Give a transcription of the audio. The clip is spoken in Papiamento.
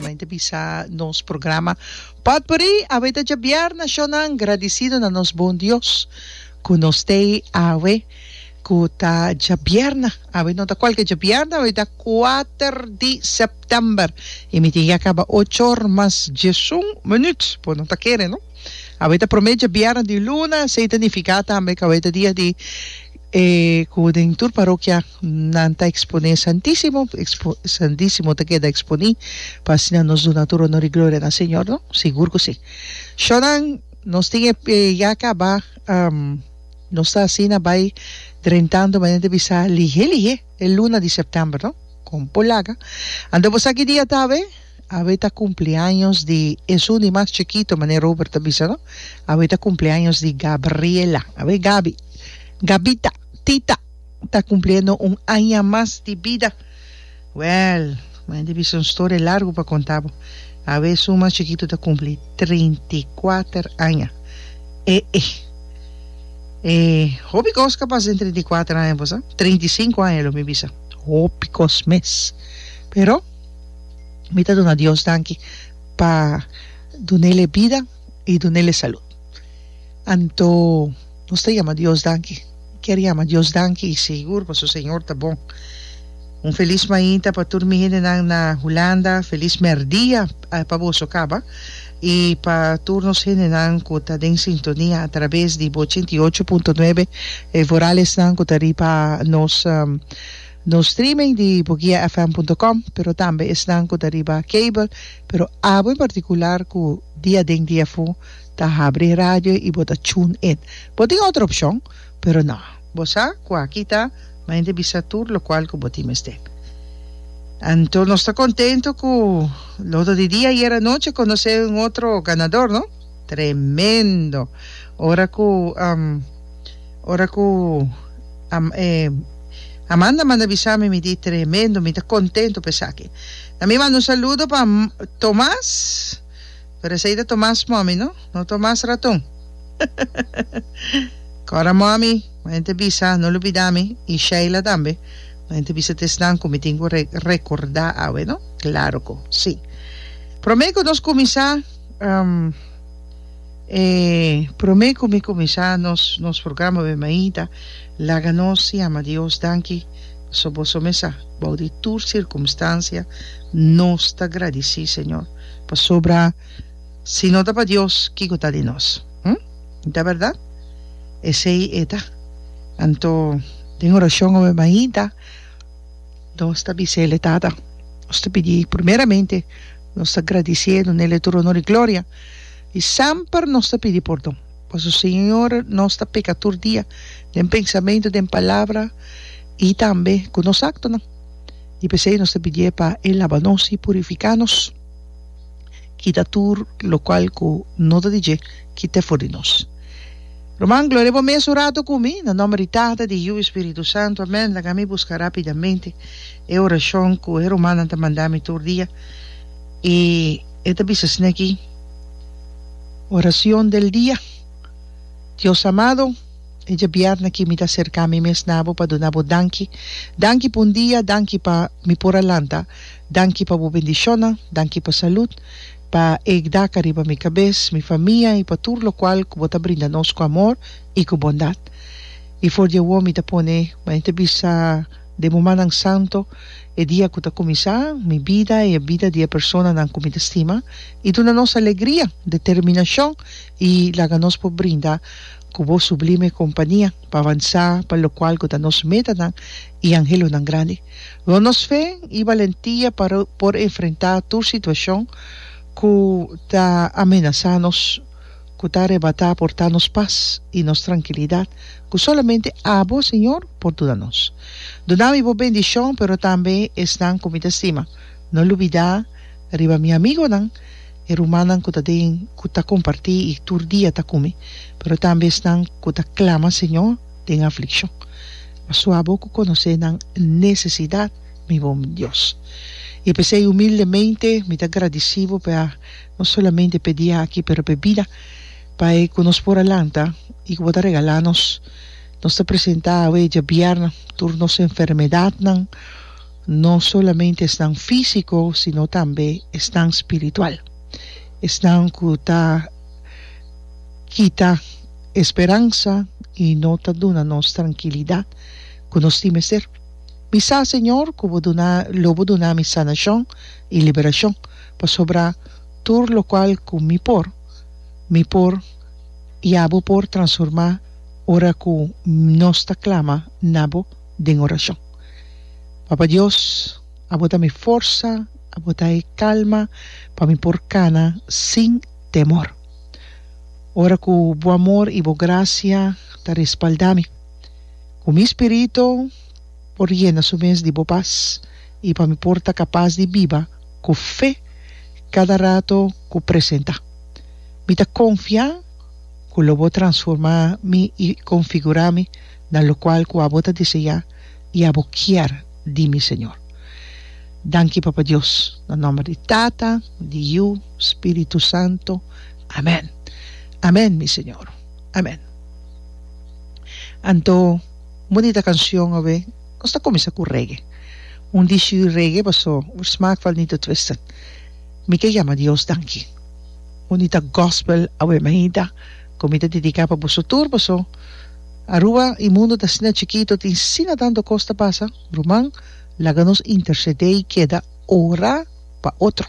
Mente bisa nos programa pòt bori awe ta djabier nashonnan gradisido na nos bon Dios ku no stay awe ku ta djabièrna awe no ta kualke djabièrna awe ta kuater di sèptèmber i mi tin ya kaba ocho or mas diesun minut por no ta kere no awe ta promé djabièrna di luna esei ta nifiká tambe ku awe ta dia di E ku den tur parokia nan ta eksponé Santísimo, ekspo, Santísimo ta keda eksponí, pa asina nos duna tur onor i gloria na Señor, no? Sigur ku sí. Shornan, nos tin e e ya kaba, nos ta asina bai drentando manera di bisa lihé lihé e luna di sèptèmber, no? Kon por laga. Anto bo sa ki dia ta awe? Awe ta cumpleaños di esun di mas chikito, mane Robert ta bisa no. Awe ta cumpleaños di Gabriela, awe Gabi, Gabita, tita, ta cumpliendo un aña mas di bida. Well, mane ta bisa un storia largo pa conta bo. Awe esun mas chikito ta cumpli trinta i kuater aña. E e e hopi cos ka pasa den trinta i kuater aña, bo sa. Trinta i sinku aña lo mi bisa. Hopi cos mes, pero. Mi ta duna Dios danki pa dunel e bida i dunel e salud. Anto nos ta yama Dios danki. Kier yama Dios danki i sigur pasobra su Señor ta bon. Un felis mainta pa tur mi hendenan na Hulanda. Felis mèrdia pa boso kaba. I pa tur nos hendenan ku ta den sintonia atrabes di bo ochenta i ocho punto nuebe, e voralesnan ku ta riba nos. Nos streaming di bugiafm.com pero tambe esnan ku ta riba cable pero abo en partikular ku di aden di afu ta habri e radio i bo ta tune in. Bo tin otro opshon pero no. Bo sa ku aki ta mainta e bisa tur lokual ku bo tin mester. Anto nos ta kontento ku loto di dia ayer anochi a konosé un otro ganador no. Tremendo! Ora ku. Ora ku e Amanda manda bisa mi mi di tremendo mi ta kontentu pa esaki na mi manda un saludo pa Tomas pero esei ta Tomas mòmi no no Tomas Ratun kòrda mòmi maya ta bisa no lo bida mi i Sheila tambe maya ta bisa ta esnan ku mi tin ku rekorda awe no klaro ku si prome ku nos kuminsá. E prome ku mi kuminsá nos nos programa be Maida, laga nos yama Dios danki paso boso mesa bou di tur sirkumstansia nos ta gradisí Señor pasobra si no ta pa Dios kiko ta di nos? Hm? No ta bèrdat? Esei e ta. Anto den orashon obe Maida nos ta bisele Tata nos ta pidi primeramente nos ta gradisiendo nele tur onor i gloria. I semper nos ta pidi pordon, paso Señor nos ta peka tur dia den pensamentu, den palabra i tambe ku nos aktonan. I p'esei nos ta pidié pa E laba nos i purifiká nos, kita tur lokual ku no ta di dje ki t'e for di nos. Ruman, gloria bo mes un ratu ku mi, na nòmber di Tata, di Yiu i Spiritu Santu. Amèn. Laga mi buska rápidamente e orashon ku e rumannan ta manda mi tur dia i. E ta bisa esne aki, Oracion del dia, Dios amado, e djabièrna aki mi ta acerca mi mes na bo pa duna bo danki, danki pa un dia, danki pa mi por a lanta, danki pa bo bendicionnan, danki pa salud, pa e gdaca riba mi cabes, mi famia y pa tur locual cu bo ta brinda nos cu amor y cu bondad. Y for di awo mi ta pone, mane ta bisa, Den mumannan santo, e dia ku ta kuminsá, mi bida i e bida di e personanan ku mi ta stima i duna nos alegria, determinashon i laga nos por brinda ku bo sublime kompania pa avansá pa lokual ku ta nos metanan i anhelonan grandi. Rònt nos fe i balentia pa por enfrentá tur situashon ku ta amenasá nos. ku ta arebatá por ta nos pas i nos trankilidat ku solamente Abo, Señor, por duna nos. Duna mi bo bendishon, pero tambe esnan ku mi ta stima. No lubidá riba mi amigonan, e rumannan ku ta den ku ta kompartí i tur dia ta ku mi, pero tambe esnan ku ta klama Señor den aflikshon. Pasobra Abo ku konosé nan nesesidat, mi bon Dios. I p'esei humildemente mi ta gradisí Bo pa e. no solamente p'e dia aki pero p'e bida, pa e ku nos por a lanta i ku bo ta regalá nos. Nos ta presentá awe djabièrnè tur nos enfermedatnan, no solamente esnan físiko sino tambe esnan spiritual, esnan ku ta kita e speransa i no ta duna nos trankilidat ku nos tin mester. Mi sa, Señor, ku bo duna lo bo duna mi sanashon i liberashon. pasobra tur lokual ku mi por, mi por, i abo por transurmá ora ku nos ta klama na bo den orashon. Papa Dios, abo ta mi forsa, abo ta e kalma pa mi por kana sin temor. Ora ku bo amor i bo grasia ta respaldá mi, ku mi spirito por yena su mes di bo pas i pa mi por ta kapas di biba, ku fe kada rato ku presentá. Mi ta konfiá ku lo bo transformá mi i konfigurá mi na lokual ku abo ta diseñá i abo kier di mi, Señor. Danki, Papa Dios, na nòmber di Tata, di Yu, Spiritu Santo. Amèn. Amèn, mi Señor. Amèn. Anto, un bonita kanshon, obe. Nos ta kuminsá ku reggae. Un dishu di reggae pasó Oor Smaak val Nito Twisted. Mi ta yama Dios danki. Un di ta gospel awe Mahita ku mi ta dediká pa boso tur pasó Aruba i mundu ta asina chikitu tin sina tantu kos ta pasa. Ruman, laga nos intersedé i keda ora pa otro.